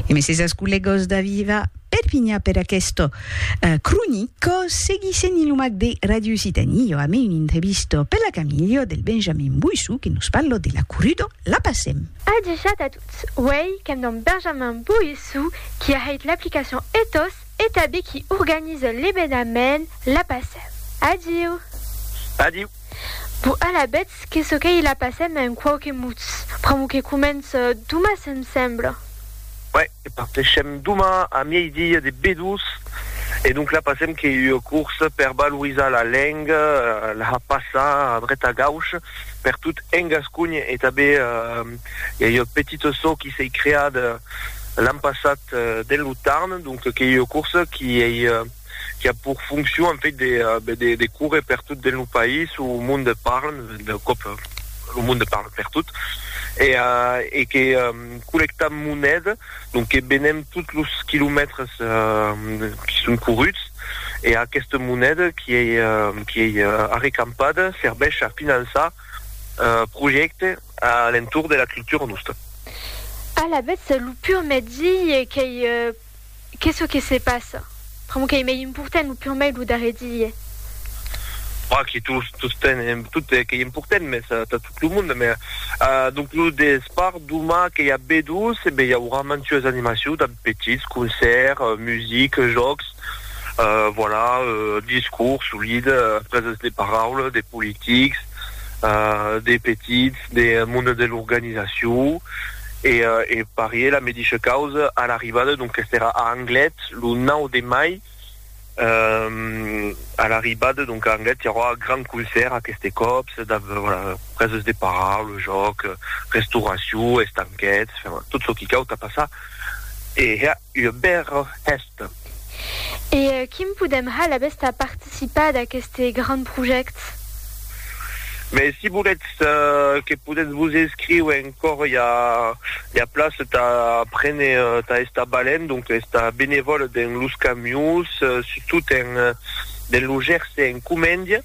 E messejos collegos da Viva Perpigna per aquesto eh, cronico seguissent in lo mac de Radio Occitanie io ame un intrevisto per la Camilio del Benjamin Boissou que nos parlo de la Curudo la passem. Adishat a tots, uèi qu'èm damb Benjamin Boissou qui a hèit l'aplicacion Ethos e tabé qui organise l'ebenament la passem. Adiu! Adiu! Bon, alavetz, qu'es çò qu'ei la passèm en quauque mots, pr'amor que comence doma, se'm sembla. Uèi, que partèshem doma a miei-dia de Bedús, e donc la passèm qu'ei ua corsa per valorizar la lenga, la passar a dret a gauch per tot en Gascony, e tanben i a ua petita çò qui s'ei creada l'an passat dens lo Tarn, donc qu'ei ua corsa qui ei qui a pour fonction en fait de ben de de córrer per tot dins lo país o au monde parle de còp lo monde parle per tot e euh e que collectam moneda donc que benem tot los quilomètres euh qui son corruts e aquesta moneda qui ei qui ei arrecampada serveish a finançar euh projècte a l'entorn de la cultura nosta. Alavetz lo pur mètzi qu'ei Qu'es çò que se passa? Pr'amor qu'ei mei important lo pur mei lo darrer dilhe. Oi que tot qu'ei important, mès tà tot lo monde. Mès donc lo despart doma que i a B2, e ben i aurà mantues animacions damb petits, concèrt, music, jòcs, voilà, discours, solide, preses de paraula, de politics, de petits. de monde de l'organizacion e e parié la medisha causa a l'arribada donc qu'est era a Anglet lo 9 de mai a l'arribada donc a Anglet i aurà grand concèrt aqueste còps preses de parar lo jòc restauracion estanquets tot çò qui cau tà passar e ua bèra hèsta. E quin podèm hal abèst a participar d'aqueste grand projèct? Mès si volètz que podètz vos inscriu encòr i a ua plaça tà prene tà estar balènt, donc estar benevòl dens los camions, surtout dens lo Gerse en Comèndia.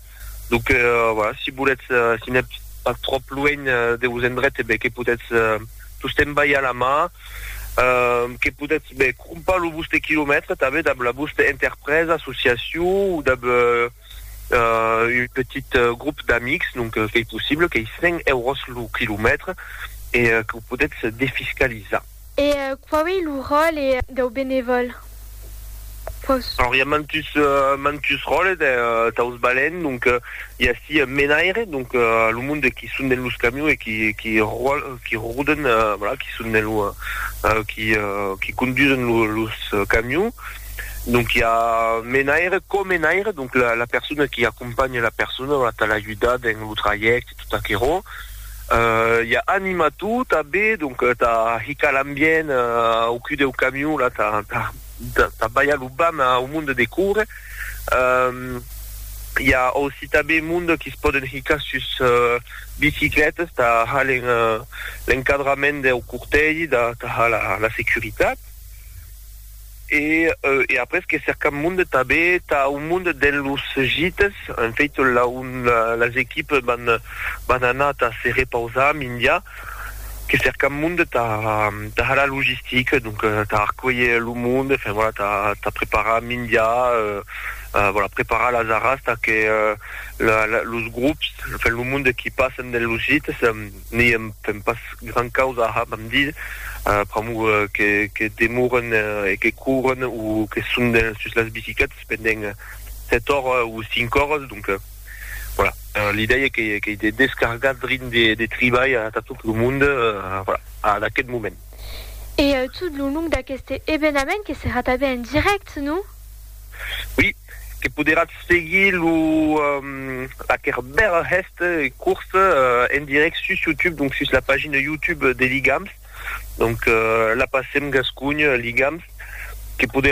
Donc euh, voilà, si voletz, euh, si n'êtes pas trop loin euh, de vos endrets, eh ben, que potètz euh, tostemps balhar la mà, euh, que potètz ben, crompar lo vostre quilomètre tanben dab la vostra interpresa, associacion o dab euh, euh, un petit euh, groupe d'amics, donc euh, qu'ei possible, qu'ei 100 euros lo quilomètre e euh, que ho potètz defiscalizar. E quau ei lo ròle dau benevòl? Quaus. Alòrs i a mantus mantus ròles daus balèns, donc i a ací un menaire, donc lo monde qui son dens los camions e qui qui ròl qui roden voilà qui son dens lo qui qui condusen lo los camions, donc i a menaire, co-menaire, donc la la persona qui acompanha la persona, voilà tà l'ajudar dens lo trajècte tot aquerò. I a anima tot a be, donc ta hicar l'ambient au cul deu camion, la ta ta balhar lo bam au monde de córrer. I a aussi ta be monde qui se pòden hicar sus biciclètas, ta ha l'encadrament deu cortègi, ta ha la securitat. E e après que cercam monde tabé tà un monde dens los gites, en fait la un las equipes van van anar tà se repausar mindia que cercam monde tà tà har la logistique donc tà arcuelher lo monde enfin voilà tà tà preparar mindia euh voilà preparar las arras tà que la la los grops enfin lo monde qui passen dens los gites N'i èm fent pas gran causa a hab amb dir, pr'amor que demoren e que couren o que son sus las bicicletas pendent 7 oras o 5 oras, donc voilà, l'idèia qu'ei de descargar drin de tribalh atà tot lo monde, voilà, ad aquest moment. E tot lo long d'aqueste evenament que serà tanben en dirèct, non? Oui. que poderatz seguir lo aquer bèl hèst curs en direct sus YouTube donc sus la pagina YouTube de Ligams donc la pasem gascogn Ligams que poder